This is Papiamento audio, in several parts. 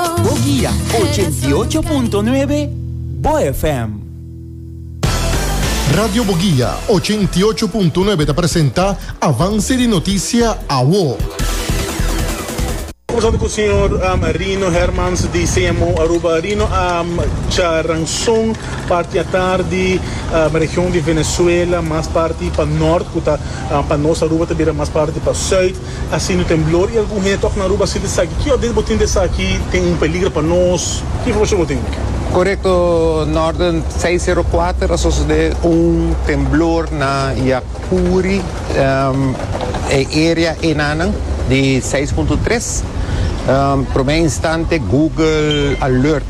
Bo guia ochenta y ocho punto nuebe Bo FM. Radio Bo Guia ochenta y ocho punto nuebe ta presenta Avance di Noticia Awo. Conversando cu señor um, Rino Hermans di CMO Aruba. Rino, um, cha ranson partiatar di um, región di Venezuela, mas parti pa norte, cu ta um, pa nos Aruba, ta bira mas parti pa zuid. Asina temblor y algun hende ta tok na Aruba sinti esaki. Ki orden bo tin di esaki tin un peligra pa nos? Ki informacion bo tin? Corecto, Norden seis zero cuater a sosode un temblor na Yacuri, e area enanan di seis punto tres. Prome instante Google alert.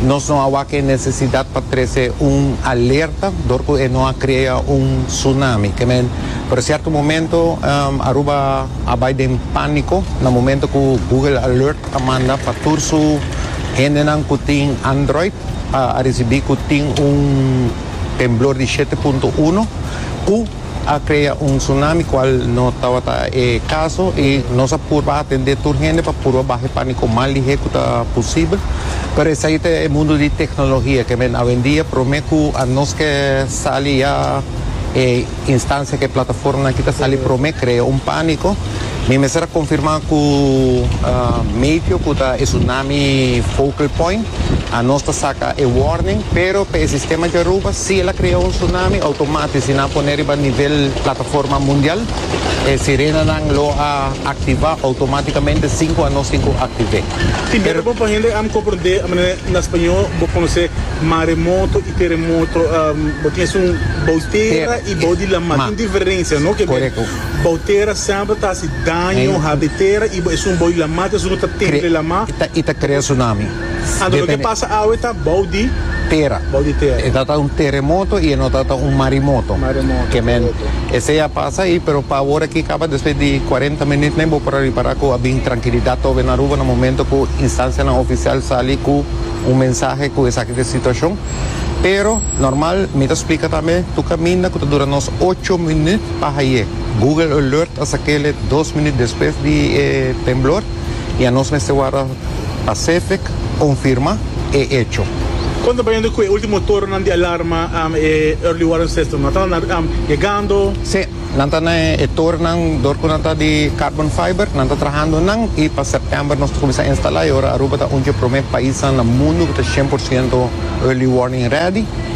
Nos no a wak e necesidad pa trece un alerta dor cu e no a crea un tsunami. Ke men, pero cierto momento Aruba a bay den panico na momento cu Google Alert a manda pa tur su hendenan cu tin Android a ricibi cu tin un temblor di shete punto uno cu a crea un tsunami cual no tabata e caso y nos a purba atende tur hende pa purba baha e panico mas lihe cu ta posibel pero esai ta e mundo di tecnologia que men awendia prome cu a nos ke sali ya e instancia ke plataformanan aki ta sali prome crea un panico Mi mester a confirma cu Maypyo cu ta e tsunami focal point a nos ta saca e warning pero pa e sistema di Aruba si el a crea un tsunami automatisch si nan a pone riba nivel plataforma mundial e sirenanan lo a activa automaticamente sin cu anos tin cu activé. Tin bira bon pa hende am comprende manera na spañó bo conoce maremoto y teremoto bo tin esun bou di tera y bou di lamar tin diferencia no ke bira Bou tera semper ta hasi daño, habri tera y bo esun bou y lama ta esun cu ta temple lama. Y ta crea tsunami. Anto loke pasa awe ta bou di tera. Bou di tera. E ta ta un teremoto y e no ta ta un marimoto. Marimoto. Ke men esey a pasa ahi pero pa awor aki caba despues di cuarenta minut men bo por a ripara cu a bin trankilidad tobe na Aruba na momento cu instancianan oficial sali cu un mensahe cu esaki ta e situacion. Pero normal mi ta splica tambe tur caminda cu ta dura nos ocho minut. Pa haye Google Alert a sakele dos minut despues di e temblor y a nos mester warda pa CEFEC confirma e hecho. Con ta bayendo cu e ultimo toronan di alarma e Early Warning System? Nan ta na yegando? Sí, nan ta na e toronan door cu nan ta di carbon fiber, nan ta trahando nan y pa september nos ta cuminsa instala y ora Aruba ta un dje prome paisnan na mundo cu ta cien por ciento Early Warning ready.